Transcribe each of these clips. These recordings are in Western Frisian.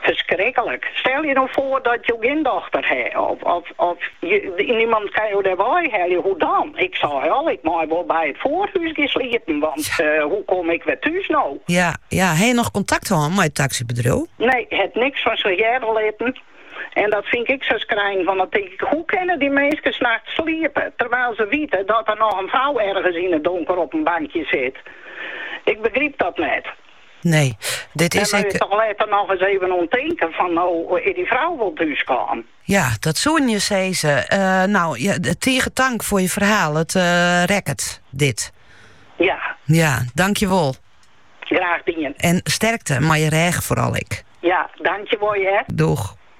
Ferskriklik. Stel je no foar dat jo gjin dochter ha of of niemand kin jo dêr wei helje, hoe dan? Ik sei al, ik mei wol by it fjoerhûs gean sliepen, want hoe kom ik wer thús no? Ja, ja. Ha je noch kontakt hân mei it taksybedriuw? Nee, hat niks fan sech hearre litten. En dat fyn ik sa skrinend, want dan tink ik, hoe kinne dy minskes nachts sliepe terwyl se wite dat der noch in frou ergens yn it donker op in bankje sit? Ik begryp dat net. Nee, dit is ek... Dêr moat je letter noch ris even oan tinken fan no is dy frou wol thús kaam. Ja, dat soenen je sizze. No, tige tank foar je ferhaal. It rekket, dit. Ja. Ja, dankjewol. Graach dien. En sterkte mei je rêch foaral ek. Ja, dankjewol. Doei.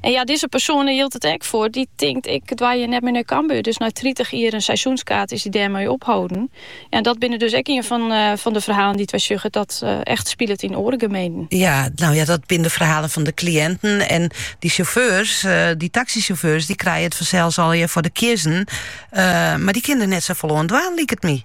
En ja, dizze persoan dêr jildt it ek foar. Dy tinkt, ik dwaa hjir net mear nei Cambuur. Dus nei tritich jier in seizoenskaart is dy dêrmei opholden. Ja, en dat binne dus ek ien fan, eh, fan de ferhalen dy't wy sjogge dat eh, echt spilet yn oare gemeenten. Ja, no ja, dat binne de ferhalen fan de kliïnten. En dy sjauffeurs, eh, dy taksysjauffeurs, dy krije it fansels aardich foar de kiezzen. Eh, mar dy kinne der net safolle oan dwaan, liket my.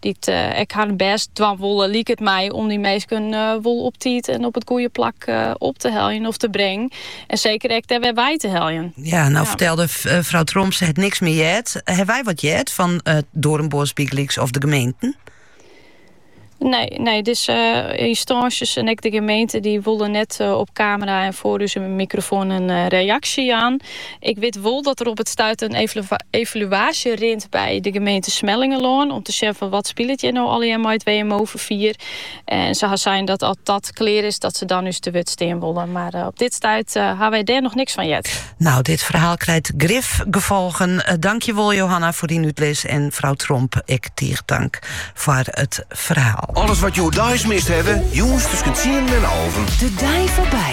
Dy't ek harren bêst dwaan wolle, liket my, om dy minsken wol op tiid en op it goede plak op te heljen of te brengen. En seker ek dêr wer wei te heljen. Ja, no fertelde frou Tromp, se hat niks mear heard. Hawwe wy wat heard fan Doornbos bygelyks of de gemeenten? Nee, nee, dus uh, ynstânsjes en ek de gemeente dy wolle net eh, op kamera en foar ús mikrofoan in eh, reaksje jaan. Ik wit wol dat der op it stuit in evaluaasje rint by de gemeente Smellingerlân om te sjen fan wat spilet hjir no allegear mei it WMO-ferfier. En se ha sein dat as dat klear is, dat se dan ús te wurd stean wolle. Mar op dit stuit ha wy dêr noch niks fan heard. No, dit ferhaal krijt grif gefolgen. Dankjewol Johanna foar dyn útlis en frou Tromp ek tige tank foar it ferhaal. Alles wat jo hjoed mist hawwe, jûns tusken tsienen en alven. De dei foarby.